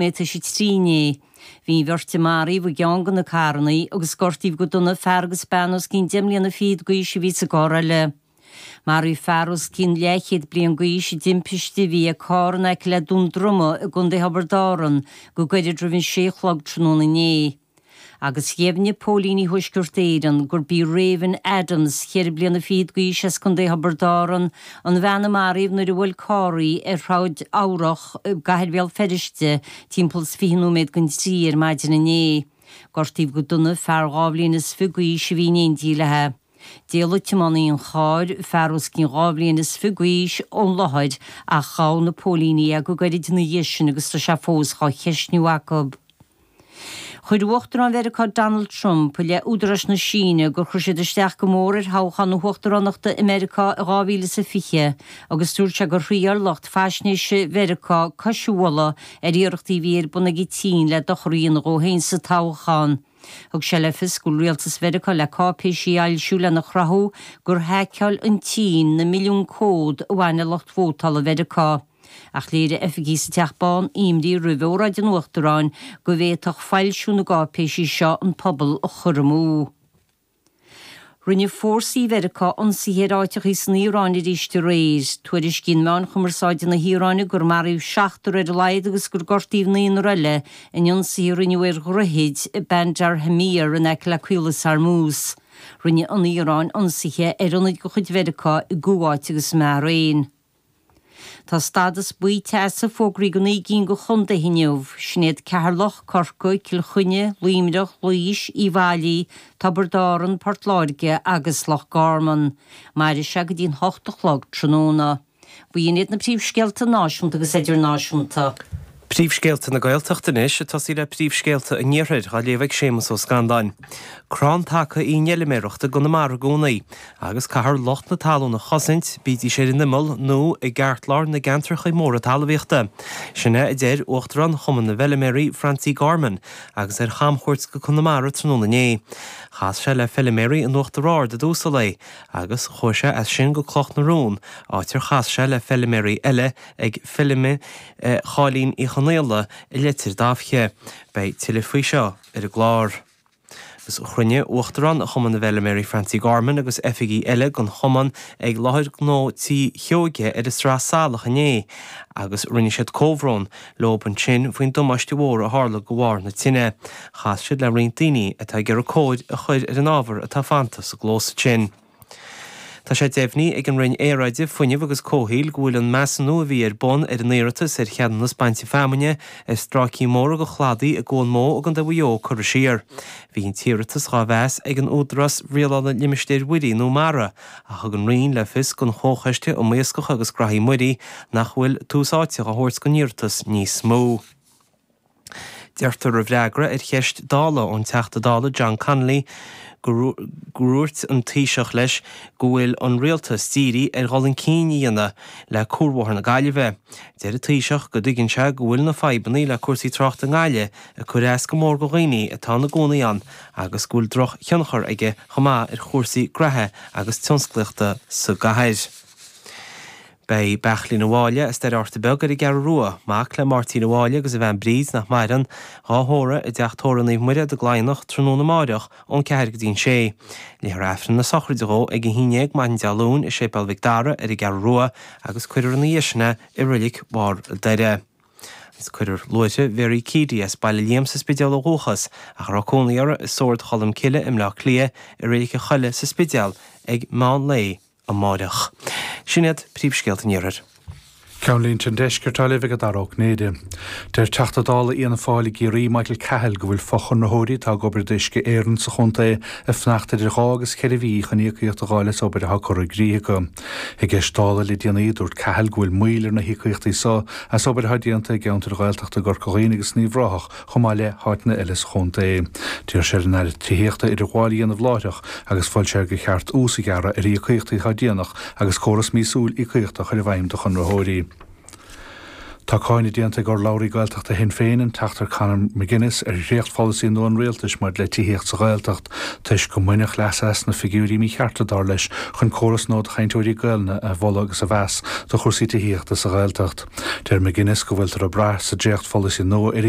mé tar éis a trí inné. Bhí an bheirt a maraíodh i gceann de na carrannaí agus gortaíodh go dona fear agus bean os cionn deich mbliana fichead d'aois a bhí sa gcarr eile. Maraíodh fear os cionn leathchéad bliain d'aois i dtimpiste a bhí ag carr in aice le Dún Droma i gContae Thiobraid Árann go gairid roimh an sé a chlog tráthnóna inné. agus dheimhnigh Póilíní Thuaisceart Éireann gurb í Raven Adams, ceithre bliana fichead d'aois as Contae Thiobraid Árann, an bhean a maraíodh nuair a bhuail carr í ar Shráid Eabhrac i gcathair Bhéal Feirste timpeall is fiche nóiméad don trí ar maidin inné. Gortaíodh go dona fear dhá bhliain is fiche d'aois a bhí in éindí léi. D'éalaigh tiománaí an chairr, fear os cionn dhá bhliain is fiche d'aois, ón láthair ach ghabh na póilíní é go gairid ina dhiaidh sin agus tá sé fós á cheisniú acu. Chuir Uachtarán Mheiriceá Donald Trump i leith údaráis na Síne gur chuir siad isteach go mór ar thoghchán na huachtaránachta i Meiriceá in 2020 agus dúirt sé gur thriail lucht faisnéise Mheiriceá cois a bhualadh ar iarrachtaí a bhí ar bun ag an tSín le dochar a dhéanamh dhó féin sa toghchán. Thug sé le fios go bhfuil rialtas Mheiriceá le cáipéisí a fhoilsiú lena chruthú gur haiceáil an tSín na milliúin comhad a bhain le lucht vótála Mheiriceá. Ach léirigh oifigigh sa Teach Bán imní roimh óráid an Uachtaráin go bhféadfadh foilsiú na gcáipéisí seo an pobal a chur amú. Rinne fórsaí Mheiriceá ionsaithe ar áiteachaí san Iaráin arís aréir. Tuairiscíonn meáin chumarsáide na hIaráine gur maraíodh seachtar ar a laghad agus gur gortaíodh naonar eile in ionsaithe a rinneadh ar dhroichid i Bandar Khamir in aice le Caolas Hormuz. Rinne an Iaráin ionsaithe ar ionaid de chuid Mheiriceá i gCuáit agus i mBahrain. Tá stádas buí teasa fógraithe do naoi gcinn de chontaetha inniu. Sin iad Ceatharlach, Corcaigh, Cill Chainnigh, Luimneach, Laois, Uíbh Fhailí, Tiobraid Árann, Port Láirge agus Loch Garman. Mairfidh sé go dtí'n hocht a chlog tráthnóna. B'in iad na príomhscéalta náisiúnta agus idirnáisiúnta. Príomhscéalta na Gaeltachta anois ag tosaí le Príomhscéalta an Iarthair, á léamh ag Séamas Ó Scanláin. Crann taca í an fheiliméaracht i gConamara i gcónaí, agus caithfear lucht na talún a chosaint, bídís ar an imeall nó i gceartlár na gceantracha móra talmhaíochta. Sin é a deir Uachtarán Chumann na bhFeiliméaraí, Francie Gorman, agus ar chamchuairt go Conamara tráthnóna inné. Chas sé le feiliméaraí in Uachtar Ard i dtús an lae, agus chuaigh sé as sin go Cloch na Rón, áit ar chas sé le feiliméaraí eile, ag feilm Cháilín Uí Chonaola i Leitir Dabhche. Beidh tuilleadh faoi seo ar an gclár. Agus chruinnigh Uachtarán Chumann na bhFeilméaraí Francie Gorman agus oifigigh eile den Chumann ag Láthair Ghnó Tí Sheoige ar an Sraith Salach inné agus rinne siad comhbhrón leob ansin faoin damáiste mhór a tharla de bharr na tine. Chas siad le roinnt daoine atá ag iarraidh cóir a chur ar an ábhar atá fanta sa gclós ansin. Tá sé deimhnithe ag an Roinn Aeráide, Fuinnimh agus Comhshaoil go bhfuil an measúnú a bhí ar bun ar an iarratas ar cheadúnas bainte feamainne ar stráicí móra de chladaí i gCuan Mó i gContae Mhaigh Eo curtha siar. Bhí an t-iarratas dhá mheas ag an Údarás Rialála Limistéir Mhuirí, nó MARA, ach thug an Roinn le fios don Chomhchoiste um Iascach agus Graithí Muirí nach bhfuil tús áite á thabhairt don iarratas níos mó. Deirtear i bhfreagra ar cheist Dála ón Teachta Dála John Connolly go ndúirt an Taoiseach leis go bhfuil an Rialtas dírithe ar dhul chun cinn a dhéanamh le cuarbhóthar na Gaillimhe. Deir an Taoiseach go dtuigeann sé go bhfuil na fadhbanna le cúrsaí tráchta i nGaillimh ag cur as go mór go dhaoine atá ina gcónaí ann agus go bhfuil drochthionchar aige chomh maith ar chúrsaí graithe agus tionsclaíochta sa gcathair. Beidh Beairtlín an Bháille, as Doire Fhatharta Beag, ar an gCeathrú Rua. Mac le Máirtín an Bháille agus a bhean Bríd, nach maireann, dhá thórramh i dTeach Tórraimh Naomh Muire i gCladhnach, tráthnóna amárach ón ceathair go dtí an sé. Léifear Aifreann na sochraide dhó ag a haon dhéag maidin Dé Luain i Séipéal Mhic Dara ar an gCeathrú Rua, agus cuirfear ina dhiaidh sin é i Reilig Bharr an Doire. Cuirfear luaithreach Mhary Keady as Baile Liam sa Spidéal ó dhúchas, ach a raibh cónaí uirthi i Sórd Cholm Cille i mBleá Cliath, i Reilig an Choilligh sa Spidéal ag meán lae, amárach. Sin iad príomhscéalta an iarthair. Ceannlínte an deiscirt á léamh ag Dara Ó Cinnéide. Deir Teachta Dála Fhianna Fáil i gCiarraí, Michael Cahill, go bhfuil fochonraitheoirí atá ag obair d'Uisce Éireann sa chontae ag fanacht idir dhá agus cheithre mhí chun íocaíocht a dh'fháil as obair atá curtha i gcrích acu. I gceist Dála le déanaí, dúirt Cahill go bhfuil moill ar na híocaíochtaí seo as obair atá déanta i gceantair Ghaeltachta Chorca Dhuibhne agus Uíbh Ráthach chomh maith le háiteanna eile sa chontae. D'iarr sé ar an Aire Tithíochta idirghabháil a dhéanamh láithreach agus mhol sé gur cheart ús a ghearradh ar íocaíochtaí atá déanach agus córas míosúil íocaíochta a chur i bhfeidhm do chonraitheoirí. Tá cáineadh déanta ag urlabhraí Gaeltachta Shinn Féin, an Teachta Conor McGuinness, ar dhréachtpholasaí nua an Rialtais maidir le tithíocht sa Ghaeltacht toisc gur baineadh leas as na figiúirí míchearta, dar leis, chun córas nua do chainteoirí Gaelainne a mholadh agus a mheas do chúrsaí tithíochta sa Ghaeltacht. Deir McGuinness go bhfuiltear ag brath sa dréachtpholasaí nua ar